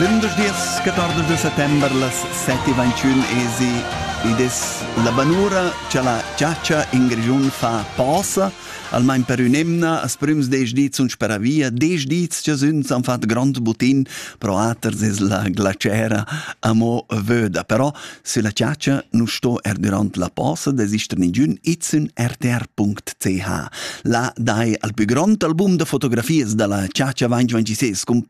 Lündeschdias 14 de settember las 7.21 esi ed es la banura cha la chatscha in Grischun fa posa, almain per ün'emna as prüms desch dis sun speravia, desch dis cha sün s'han fat grond butin pro aters es la glacera amo vöda. Però sülla chatscha nu sto er durant la posa desister ningün, id sün rtr.ch. Là dai al plü grond album da fotografias da la chatscha vain 26 cun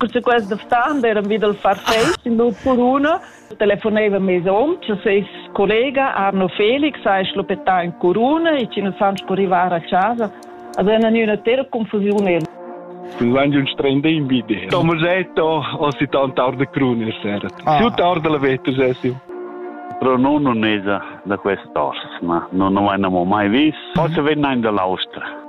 Cunter quest stan eran vi dal farfeis in nut curuna telefoneva mes hom che ses collega Arno Felix ha schluppetà in curuna e che nus han scurrivar a casa. Also era una tera confusione. L'angel strende in bidè. Tomasetto, ho si tanta arda cruna sera. Ah. Su tarda la vetta, Sessio. Però non non esa da quest'ors, ma non ho mai mai vis. Forse venne in dall'Austria.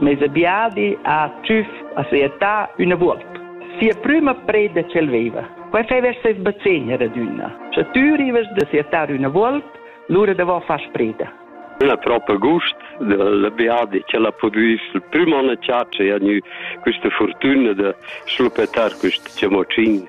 Mes biadi ha tschüf a sia età üna vuolp. Sia prüma preda ch'el veva. Quai feva er ses bazegn er adüna. Sche tü rivas da sia età üna vuolp, lura devò far spreda. La propa gust del biadi che l'ha pudü il prüm on a chatscha e ha gnü quista furtüna da schluppetar quist chamocin.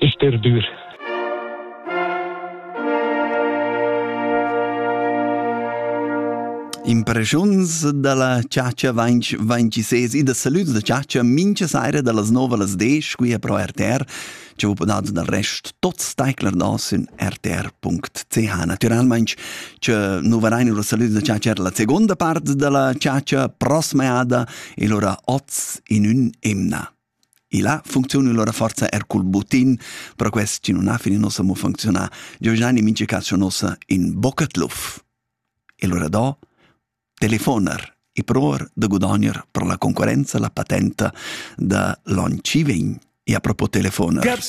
sterdur. Impreschuns da la chatscha vainch vainci ses e da salüds da chatscha mincha saira da las 9 las 10 qui pro RTR che vous podado dal rest tot steicler nos in rtr.ch naturalmente che nu varein ora salüds da chatscha la seconda part della chatscha prossima ada e lora oz in un emna E là funcziuna lura forza er cul butin, perquai chi nun ha fin in nossa mo funcziunà, Giovanni mincha cas scho nossa in bocca tluf. E lura do telefoner e provar da gudogner per la concorrenza la patenta da l'on chi vegn. E a propo telefoner.